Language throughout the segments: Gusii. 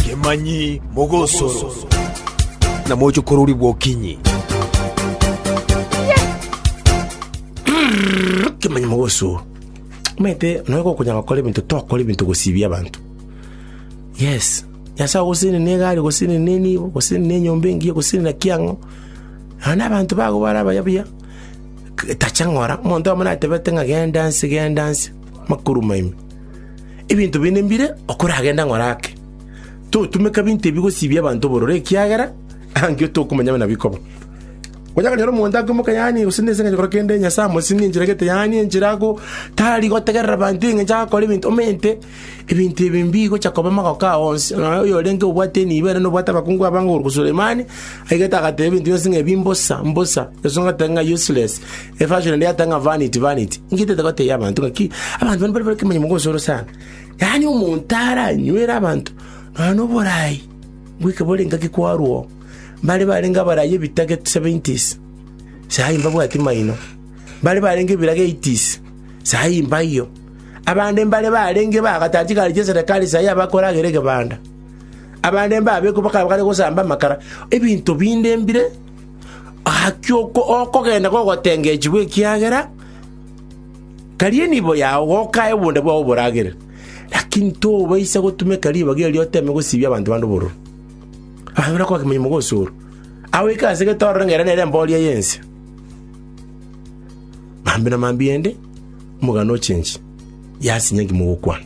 Kemanyi mogosoro, na moche kororigwa okinyi. Kemanyi mogosoro. Omanyete, nonya gokonya gokora ebinto, tokora ebinto gosibia abanto. Yes, Nyasae ogosene ne egari, ogosene ne enibo, ogosene ne enyomba engiya, ogosene na ki ang'o. Nonya na abanto bago bare abaya buya, k- tacha ng'ora, omonto amo natebete ng'a genda nse, genda nse, makoruma ime. Ebinto binde mbire okoragenda ng'ore ake? Totumeka ebinto ebi gosibia abanto obororo, ekiagera angio tokomanya buna bikoba. Onya kanyora omonto akoimoka yaani gose nese engencho ekero kende Nyasae amosinye enchera gete yaani enchera ago tari gotegerera abanto engencho agakora ebinto omente ebinto ebi mbigocha koba magoko ao onsi. Nonya oyo orenge obwate enibo ere nobwate abakungu abange okoruta Sulemani, aigete agateba ebinto bionsi ng'a ebi mbosa mbosa, eswe ngoteba ng'a useless. Efasoni ende yatanga vanity, vanity. Inki etete goteebia abanto ng'aki abanto bane mbare nekemanyererio gosoro sana? Yaani omonto aranywere abanto nonya noboraai bweka bore ngaki kwarwa oo. Mbare barenge abarai ebitage seventies, sahi mbabwati maino. Mbare barenge ebirage eighties, sahi mbaiyo. Abande mbare barenge bagataara chigari chi'eserekari sahi abakoragera egebanda. Abande mbabekwa bakaba bakare gosamba amakara. Ebinto binde mbire. Gaki okogenda gogotengechigwa, ekiagera tari enibo yao gokae obonda bwao oboragere. Lakini tobaisa gotumeka ribaga erio oteme gosibia abanto bande obororo. Abanto barakoa kemanyi mogosoro, agoika ase getororo ng'a ere nere embooria y'ense. Mambia na mambia ende omogano ochenchie, yasinye inki mogokwana.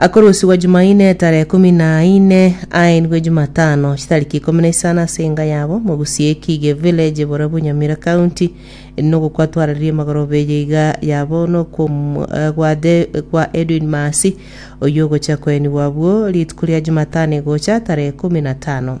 Akorusigwa Jumaine etarehe ikomi na ine, aenigwe Jumatano chitariki ikomi na isano ase enga yabo, mogusie Ekige Village bore Bunyamira County, nogokwa twarerie amagoro beye iga yabo nokwom- eh, gwa The- gwa Edwin Maasi, oyio ogochia koenigwa abwo rituko ria Jumatano egocha tarehe ikomi na tano.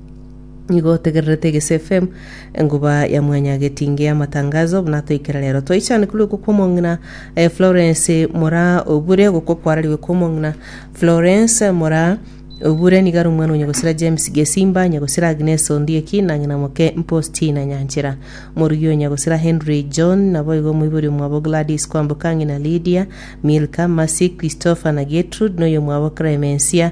Nigo otegererete Egesu FM, enguba ya mwanyagetinge y'amatangazo, buna toikire rero. Twaichanekirwe gokwa omong'ina eh, Florence Mora Obure, gokwa kwarariwe kwa omong'ina Florence Mora Obure nigo ari omwana o nyagosira James Gesimba, nyagosira Agnes Ondieki na ng'ina moke Mpostina Nyanchera. Morugi o nyagosira Henry John, naboigo omoibori omwabo Gladys Kwamboka, ng'ina Lydia, Milka, Mercy, Christopher na Gertrude, na oyomwabo Clemencia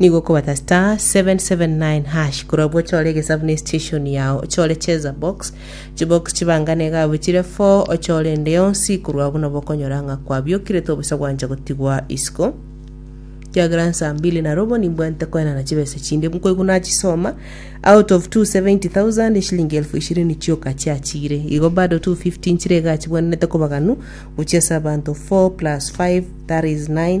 Nigo okobata star 779 hash korwa abwo ochore egesabu ne station yao ochore cheza box chibox chibangane iga abwo chire 4 ochore ende yonsi korwa abwo nabo okonyora ng'a kwabiokire tobosa gwancha gotigwa isiko kiagera nsa mbili na robo nimbwente koenana chibesa chinde nkoigwa nachisoma out of 270000 eshilingi elfu ishirini chioka chiachire igo bado 250 nchire iga achibwanete kobaganu gochia ase abanto 4 plus 5 that is 9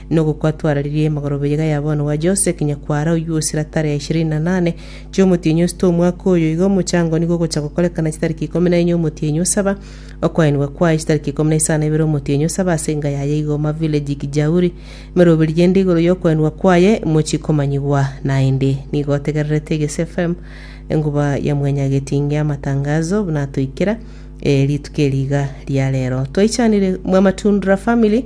Nogokwa twararirie amagoro beyega ya bono wa Jose, kinya kwara oyio osira tarehe ishirini na nane chiomotienyi osito omwaka oyo. Igo omochango nigo ogocha gokorekana chitariki ikomi na enye omotienyi osaba. Okoenigwa kwaye chitariki ikomi na isano ebere omotienyi osaba ase enga yaye igoma village Kijauri. Meroberie ende igoro yokoenigwa kwaye mochi komanyigwa naende. Nigo otegererete Egesu FM enguba ya mwenya getinge amatangazo buna atoikera rituko eri iga ria rero. Twaichanire mwa Matundra family.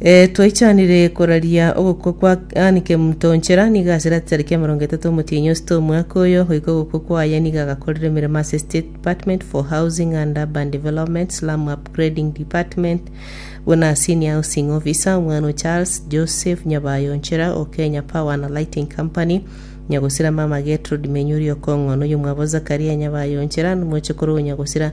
Ee, twaichanire koraria ogokwa kwa Anne Kemuntonchera, nigo ase ratiaro ya emerongo etato omotienyi osete omwaka oyo, goika ogokwa kwaye nigo agakorire emeremo ase State Department for Housing and Urban Development, Slum Upgrading Department, buna a Senior Housing Officer, omwana o Charles Joseph Nyabayonchera o Kenya Power and Lighting Company, Nyagosira mama Gertrude Menyuri o Kong'o, noyomwabo Zakaria Nyabayonchera, nomochokoro o Nyagosira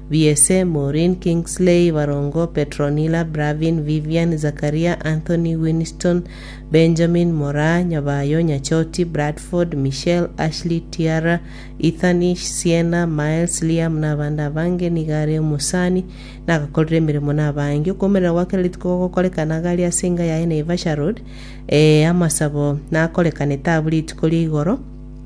Biese, Maureen, Kingsley, Barongo, Petronilla, Bravin, Vivian, Zakaria, Anthony, Winston, Benjamin, Moraa, Nyabayo, Nyachoti, Bradford, Michelle, Ashley, Tiara, Ethanish, Sienna, Miles, Liam na abande abange nigo are omosani na agakorera emeremo na abange. Okomomerera gwa kera rituko gogokorekana iga aria ase enga yaye Naivasha Road. Ee, amasabo nakorekanete abwo rituko ria igoro.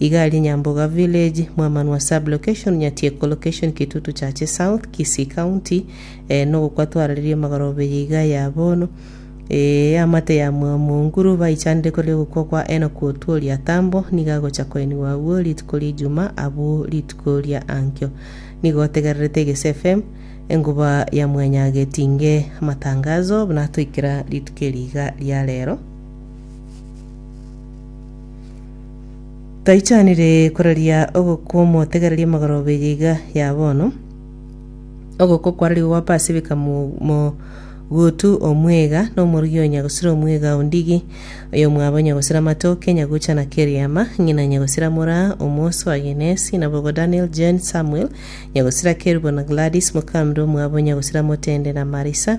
Iga aria Nyamboga village, Mwamanwa sub location, Nyatieko location, Kitutu Chache south, Kisii county, eh, nogokwa twararerie magoro beye iga ya bono, eh, amate ya Mwamonguru baichanire kore ogokwa kwa Enock Otuori atambo, nigo agocha koenigwa agwo rituko ria Ijuma abwo rituko ria ankio. Nigo otegererete Egese FM, enguba ya mwenya getinge amatangazo buna atoikera rituko eri iga ria rero. Taichanire koraria ogokwa omotegereria amagoroba eye iga ya bono, ogokwa kwararigwe gwa Pasifika mo- mo- gotu omwega na omorugi onya gosira omwega o ndigi, oyomwabo onya gosira amatoke, onya gocha na Keriama, ng'ina onya gosira mora omosu wa Genesi, nabogo Daniel, Jane, Samuel, onya gosira Kerubo na Gladys, mokambe omwabo onya gosira Motende na Marisa,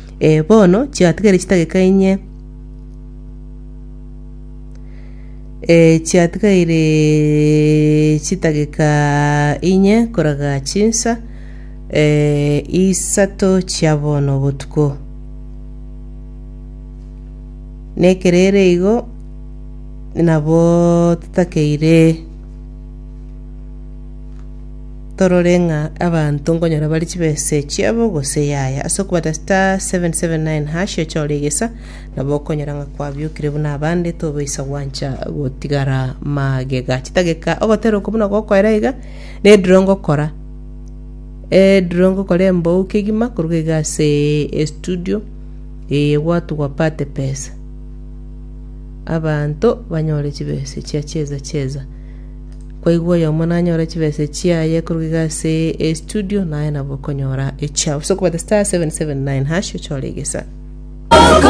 Ee, bono chiatigaire chidakika inye, ee, chiatigaire chidakika inye koraga chinsa ee, isato chia bono botuko. Nekero ere igo, nabo totakeire. Torore ng'a abanto nkonyora bare chibesa echiabo gose yaya. Ase okobata star 779 hash ochore egesa, nabo okonyora ng'a kwabiokire buna abande tobaisa gwancha gotigara magega. Chitageka ogoterwa okwo buna gokoera iga, nediro ngokora ediro ngokora embou kegima koruga iga ase estudio eye gwatugwa pate pesa. Abanto banyore chibesa echia cheza cheza. Kwaigwa oyomo nanyore chibesa echiaye koruga iga ase estudio, naye nabo okonyora echiao. Sokobata star 779 hash ochore egesa.